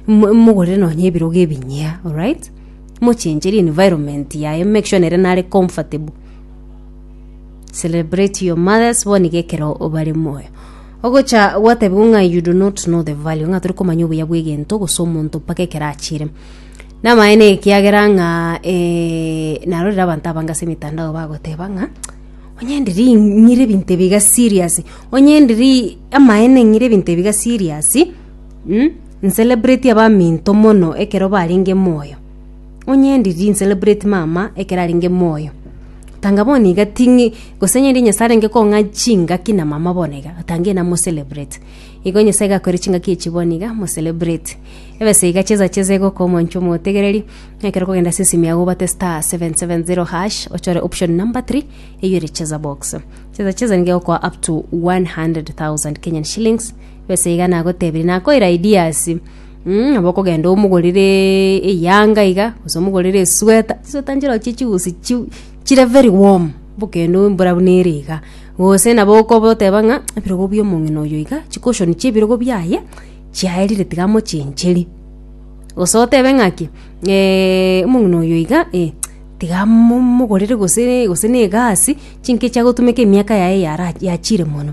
Mo- mogorere nonya ebirogo ebinyia alright mochencheri environment yaye make sure nere nare comfortable celebrate your mothers bono iga ekero bare moyo ogocha gwatebigwa ng'a you do not know the value ng'a tori komanya obuya bwa egento gose omonto mpaka ekero achire namaene ekiagera ng'a eh, narorire abanto abange ase emetandao bagoteba ng'a onye ndiri ng'ire ebinto ebiga serious onye ndiri amaene ng'ire ebinto ebiga serious Ncelebrate abaminto mono ekero barenge moyo. Onye ndiri ncelebrate mama ekero arenge moyo. Tanga bono iga ting'i, gose onye Nyasae arenge kong'a chingaki na mama bono iga, tanga ina mo celebrate. Igo Nyasae gakore chingaki echio bono iga, mo celebrate. Ebesa iga chesa chesa egoka omwancho omotegereri, ekero okogenda ase esimi yago obwate star seven seven zero hash, ochore option number three, eywo ere cheza box. Chesa chesa nigo egokoa up to one hundred thousand Kenyan shillings. Besa iga nagotebirie, nakoira ideas mm, nabo okogenda omogorere eyanga iga, gose omogorere esweta, chisweta nchirochio chie chiusi chiu chire very warm, bokende embura buna ere iga, gose nabo okoboteba ng'a ebirogo bia omong'ina oyo iga, chicushion chia ebirogo biaye chiaerire tiga mochencherie, gose otebe ng'aki omong'ina oyo iga eh tiga mo mogorere gose gose na egasi, chinki echiagotumeka emiaka yaye yara yachire mono.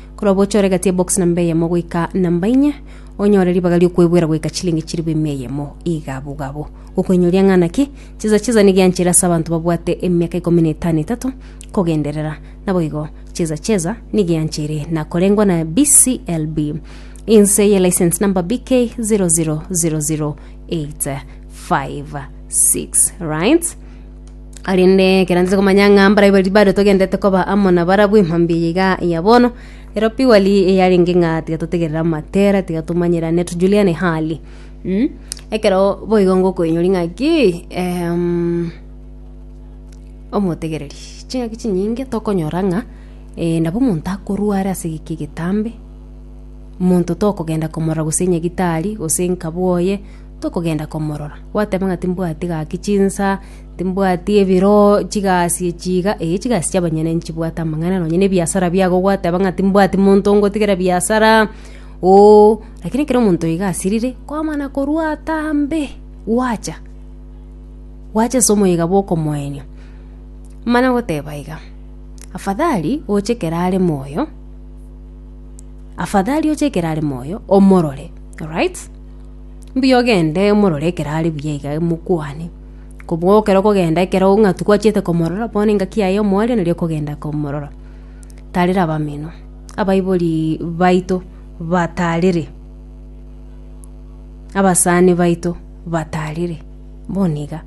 Korwa bocha oregete ebox namba eyemo goika namba inye, onyore ribaga riokwegwera goika chilingi chiribu emia eyemo igabo gabo. Gokwenyoria ng'ana ki, chisa chisa nigianchere ase abanto babwate emiaka ikomi na etano etato kogenderera. Naboigo, chisa chisa nigianchere na korengwa na BCLB inse ye license number BK 0000856 right Korende ekero nse komanya ng'a mbaria baria bare togendete koba amo na barabwo ime mbuya iga ya bono ero pigori yarenge ng'a tiga totegerere amatera tiga tomanyerane tujuliane hali mm? Ekero boigo ngokoinyori ng'aki eeemm omotegereri ching'aki chinyinge tokonyora ng'a nabo omonto akorware ase egeki egetambe omonto tokogenda komorora gose nyagitari gose nkabo oye. tokogenda komorora. Gwateba ng'a timbwati gaki chinsa, timbwati ebiro, chigasi echi iga, ee chigasi chi'abanyene nchibwate amang'ana nonye na ebiasara biago gwateba ng'a timbwati monto ngotigera biasara, ooh, lakini ekero omonto iga asirire, kwamana korwa atambe, gwacha, gwacha ase omoyega bw'okomoenia. Mana goteba iga, afadhali oche ekero are moyo, afadhali oche ekero are moyo, omorore, alright? Mbuya ogende omorore ekero are buya iga mokwane. Kobua ekero okogenda ekero ng'atu gwachete komorora bono engaki yaye omoerio nari okogenda komorora. Tarera abamino, abaibori baito batarere, abasani baito batarere bono iga.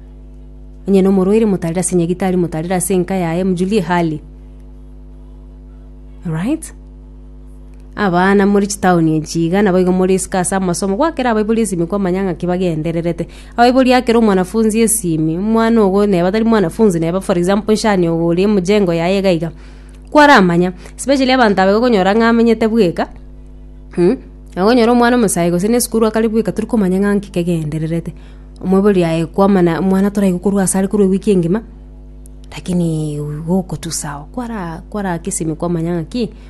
Onye nomorwaire motarere ase nyagitari motarere ase enka yaye mojulie hali. Alright? Abana more chitaoni echi iga naboigo more isiko ase amasomo, gwakera abaibori esimi kwamanya ng'aki bagendererete. Abaibori akera omwanafunzi esimi, omwana ogo neba tari mwanafunzi neba for example nshani ogo ore emujengo yaye iga iga, kwaramanya especially abanto aba iga okonyora ng'a amenyete bweka mh, okonyora omwana omosayi gose na esukuru akare bweka tori komanya ng'a nki kegendererete. Omoibori aye kwamana omwana toraigwe korwa ase are korwa ewiki engima, lakini igo okotusa ao kwara kwara ake esimi kwamanya ng'a ki.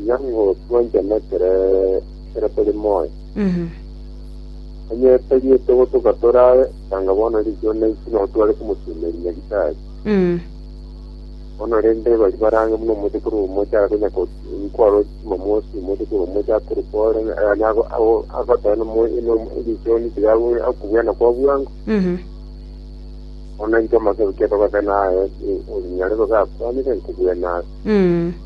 Iga nigo twanchanetere ekero tore moyo. Onye tariete gotoka torabe, tanga bono riicho naiche nao tware komotumeria nyagetari. Bono rende baria barange buna omochie korwa omochie are konya ko- nkwarwa Jumamosi, omochie korwa omochie akorwa kore, yaani ago- ago- agoteba na omo- na omo- erichoni tiga abu- akobweana kwa bwango. Bono intwe amatuko togotenena aye, onyare koba akwanire nkobwenabe.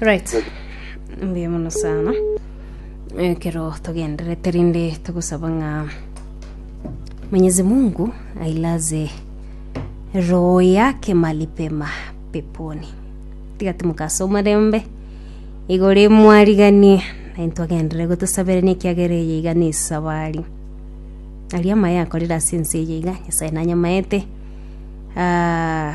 right mbuya mono sana ekero togenderete rinde togosaba ng'a mwenyezi mungu ailaze roho yake mali pema peponi tiga timokasa omorembe igore mwariganie naye twagenderere gotosaberania ekiagera eye iga na esabari aria amaye akorire ase ense eye iga nyasaye nanyamaete Ah,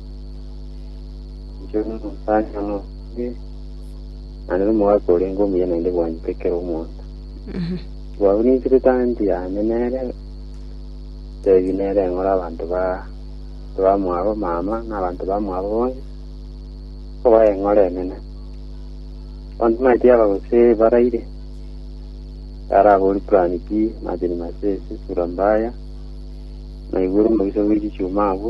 Inche n'omosacha nobe naende n'omogaka orenge omuya naende bwanyete ekero omonto Mhm. bwaurinsire tanti yane nere tebi nere ng'ora abanto ba bamwabo mama na abanto bamwabo bonsi kobaye eng'ora enene abanto maeti aba gose baraire arabori purani pi majani masese sura mbaya naigure omobaso bw'echichuma abwo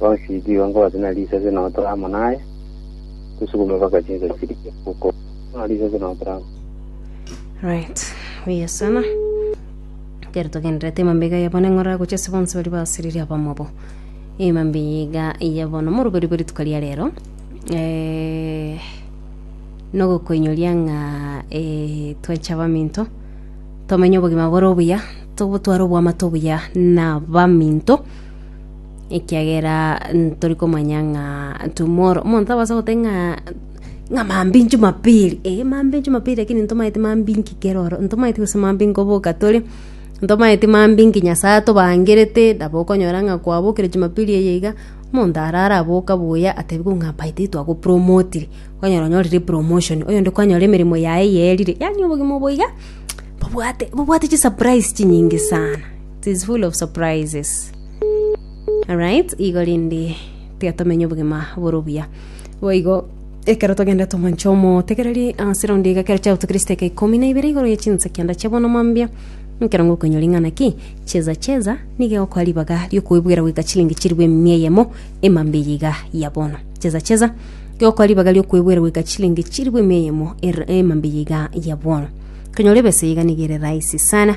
Bonsi tiga ngobaase na risase notore amo naye, tosugume mpaka chinsa chirie gokwa. Bono risase notore amo. Right, buya sana. Ekero togenderete emambe iga ya bono eng'ora gochia ase bonsi baria basiririe abamwabo. Emambe iga ya bono moroberi bwe rituko ria rero. Eh, nogokoinyoria ng'a eh, twenche abaminto tomenye obogima bore obuya tobotware oboamate obuya na baminto ekiagera ntori komanya ng'a tomorrow omonto abasa gote ng'a ng'a maambia inche jumapili eh maambia inche jumapili lakini ntomaeti maambia inki kero oro ntomaeti gose maambia inki oboka tore ntomaeti maambia inki nyasaye atobangerete nabo okonyora ng'a kwabokire jumapili eye iga omonto are araboka buya atebigwe ng'a by the way twagopromotire okonyora onyorire epromotion oyonde kwanyora emeremo yaye eye erire yaani obogima obo iga bobwate bobwate chisaprais chinyinge sana. It is full of surprises. Alright, igo rindi tiga tomenye obogima bore obuya. Boigo ekero togende tomanche omotegereri ase raundi iga kero chiabutu Kristo eke ikomi na ibere igoro ye chinsa kianda chia bono mambia nkero ngokoinyora ing'ana ki cheza cheza nige okoa ribaga riokoibwera goika chilingi chiribu emia eyemo emambia eye iga ya bono cheza cheza nige okoa ribaga riokoibwera goika chilingi chiribu emia eyemo er- emambia eye iga ya bono konyora ebesa iga nigere rahisi sana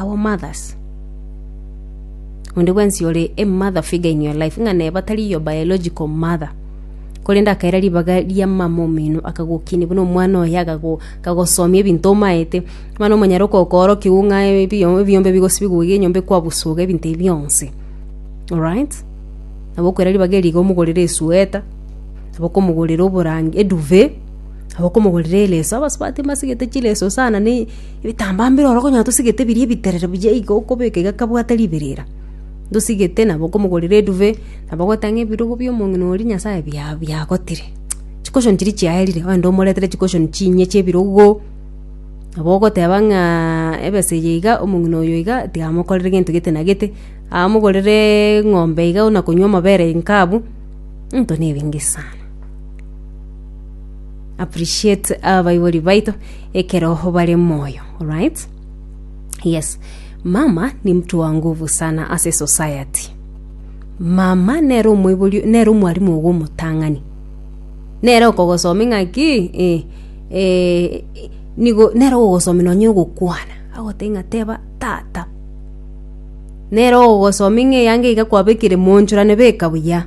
our mothers onde bwensi ore a mother figure in your life ng'a nere batari your biological mother korende akaira ribaga ria mama omino akagokinia buna omwana oye akago- akagosomia ebinto omaete mani omonyare okokoorokiwu ng'a ebiyo- ebiyombe bigosibiwa iga enyomba ekwabusu iga ebinto ebi bionsi alright nabo okoira ribaga eri iga omogorere esweater nabo okomogorera oborange eduve nabo okomogorera eleso abasubati mbasigete chileso sana ne. Ebitambaa mbire oro konya tosigete biri ebiterero buya igo okobeka iga kabwate riberera, ntosigete nabo okomogorera eduve, nabo ogoeta ng'a ebirogo bia omong'ina oria Nyasae bia biagotire. Chicushion chiria chiaerire ogende omoretere chicushion chinye chia ebirogo, nabo ogoteba ng'aaaa ebesa eye iga omong'ina oyo iga tiga amokorere gento gete na gete, amogorereee eng'ombe iga buna konywa amabere inkabu, into na ebinge sana. appreciate abaibori baito ekero bare moyo right yes mama ni mtu wa nguvu sana as a society mama nere omoibori nere omwarimu ogo omotang'ani nere okogosomia ng'aki eh, eh, nigo nere ogogosomia nonye ogokwana agoteba ng'a teba tata nere ogogosomia ng'a eyanga iga kwabekire monchorane beka buya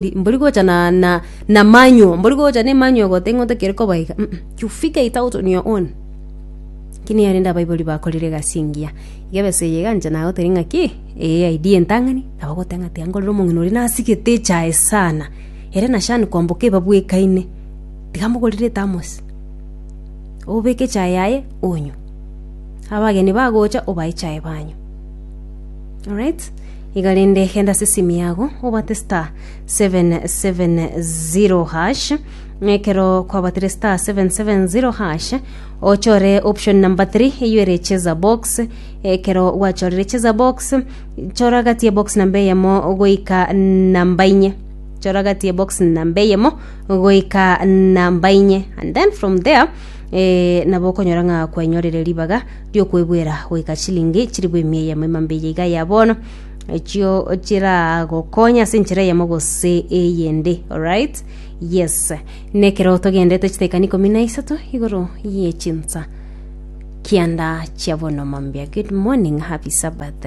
Ndi- mbori gocha na, na, na manual mbori gocha ne manual gote ing'oto kere koba iga Mm, mm. you figure it out on your own kini yarende abaibori bakorire egasi engiya iga besa eye iga inche nagotebia ng'a ki eye idea entang'ani nabo goteba ng'a tiga nkorera omong'ina oria nasigete echae sana ere na shani kwamboka ebabwekaine tiga mogorere ethermos obeke echae yaye onywe abageni bagocha obae echae banywe Alright. Iga rende genda ase esimi yago obate star 770 hash ekero kwabatire star 770 hash ochore option number 3 eyo ere cheza box ekero gwachorire cheza box chora gati ya box namba eyemo goika namba inye chora gati ya box namba eyemo goika namba inye and then from there eh, nabo okonyora ng'a kwenyorire ribaga ri'okwebuera goika chilingi chilifu emia eyemo emambe eye iga ya bono echio chiragokonya ase enchera eyemo gose eyende alright yes nekero togendete chitekani ikomi na isato igoro ye chinsa kianda chia bono mambia good morning happy sabbath